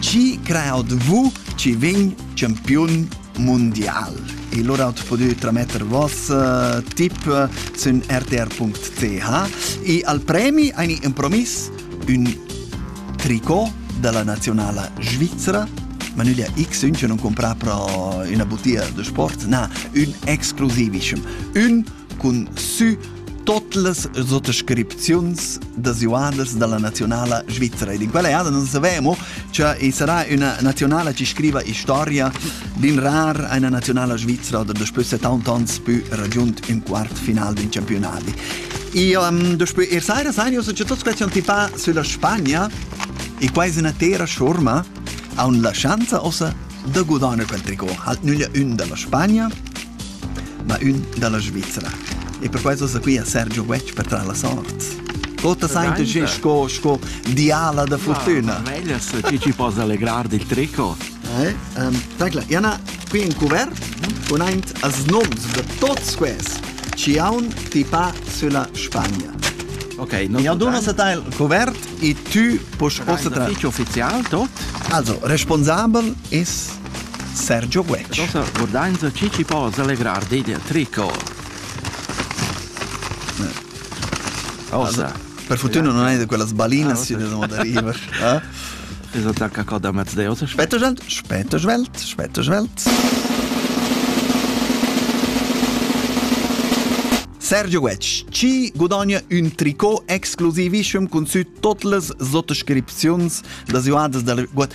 Chi creaut vu chi vegn champiun mundial? E lura at podü trametter vos uh, tip sün rtr.ch e al premi aini impromis ün tricot della nazionala svizzera ma nüglia x ün che non compra pro üna butia de sport na un exclusivischem un cun sü tot las sottoscripziuns desiuadas dalla nazionala svizzera. Ed in quella eada non savemo, cioè e sarà una nazionala che scriva historia d'in rar una nazionala svizzera da después 70 ans più raggiunto un quart final din campionati. E um, después er saira sai io c'è tot questi antipà sulla Spagna e quasi una tera schurma ha un la chance ossa da gudanar quel tricot. Halt nüglia un dalla Spagna ma ün da la Svizra. E perquai sosa qui a Sergio Wetsch per tra la sort. Quota sainte che sco sco diala da fortuna. Meglio se chi ci possa allegrar del trico. Eh, um, tagla, Jana, qui in cuvert con aint as noms de tots ques. Ciaun tipa sulla Spagna. Ok, non Mi aduna se tal cuvert e tu puoi ossa tra. Ufficial tot? Also, responsabel es Sergio Guetg. Nossa gurdainza chi chi po s'allegrar dei der tricor. Osa. Per fortuna non hai quella sbalina si da arriver. Es attacca coda mezz Deus. Spetto svelt, spetto svelt, spetto svelt. Sergio Guetg ci gudogna ün tricot exclusivissem cun sü tot las sottoscripziuns das joadas dal Guet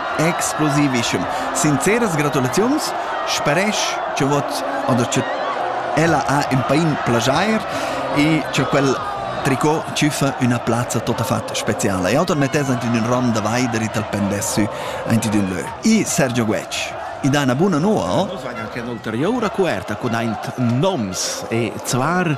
explosivischem. Sinceras gratulaziuns, speresch cha vot oder cha ella ha ün pain plaschair e cha quel tricot tschüffa üna plazza tuottafatg speciala. E oter mettess aint in ün ran da vaider e tal pendess sü aint in ün lö. I Sergio Guetg, i dà üna buna noua, o? Nus vain anche ün'ulteriura cuverta cun aint noms e zvar